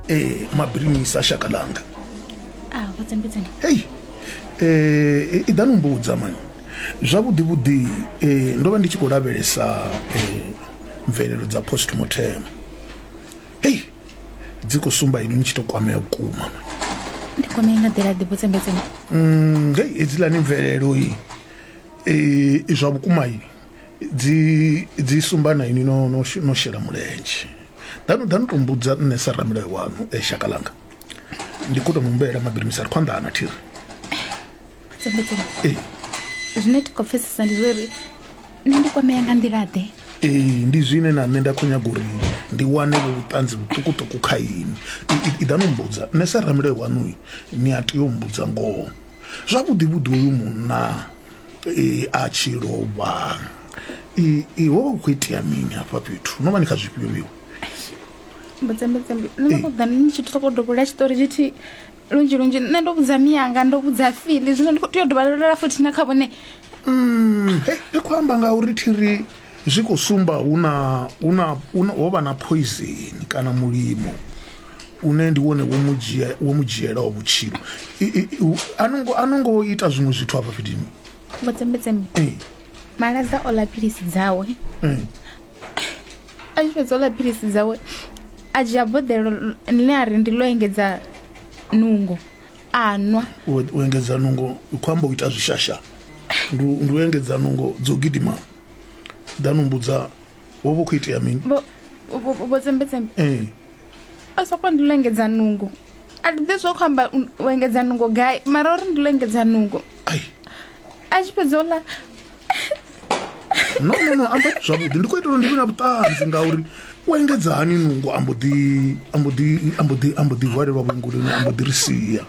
eh mabirimisa shaka langa a vhudzimbudzini hei eh i ḓani mbudza mani zwavhuḓi vhuḓi eh ndo vha ndi tshi khou lavhelesa eh mvelelo dza post mortem hei dzi khou sumba ini ni tshi to kwamea vhukuma mani ndi kwamei nga ḓila ḓi vhudzimbudzini Mm, hei hedzilani mvelelo i eh, i zwa vhukuma i dzi dzi sumba na ini no no no shela mulenzhe danu danu to mbudza nṋe sa ramilayo wanu e shaka langa ndi kho to mumbela mabirimisa ri khwanḓa ana thiri ee zwine ti khou pfesesa ndi zwo uri nṋe ndi kwamea nga nḓila ḓe ee ndi zwine na nṋe nda khou nyaga uri ndi wane vho vhuṱanzi vhuṱukuṱuku kha ini iḓa no mbudza nṋe sa ramilayo wanuyi ni a tea u mbudza ngoho zwavhuḓi vhuḓi uyu munna a tshi lovha i ho vha hu khou itea mini hafha fhethu no vha ni kha zwifhio miwe mbudzambudzambi nṋe ndo ṱoḓa ni tshi ṱhoko dovhola tshiṱori tshithihi lunzhi lunzhi nṋe ndo vhudza miyanga ndo vhudza fili zwino ndi khou tea u dovha lolola futhi na kha vhone mm, ndi khou amba ngauri thiri Zwi khou sumba hu na, hu na, hu na, ho vha na phoizeni kana mulimo une ndi wone wo mu dzhia wo mu dzhielaho vhutshilo I- i- i- a no ngo- a no ngo ita zwiṅwe zwithu afha fhetini vho tsembetsembe Eh, maladza o ḽa philisi dzawe eh. a tshi fhedza o ḽa philisi dzawe a dzhia boḓelo ḽine a ri ndi ḽo engedza nungo a nwa u u engedza nungo u khou amba u ita zwishasha ndi u- ndi u engedza nungo dzo gidima danu mbudza wo vha khou itea mini vho tsembetsembe eh. a soko ndi lengedza nungo a ndi ḓe zwo khou amba u engedza nungo gai mara uri ndi lengedza nungo a tshi fhedza ola no no no amba zwavhuḓi ndi khou itela ndi vhe na vhuṱanzi ngauri u engedza hani nungo ambo ḓi ambo ḓi ambo ḓi ambo ḓi hwalelwa vhunguloni ambo ḓi ri sia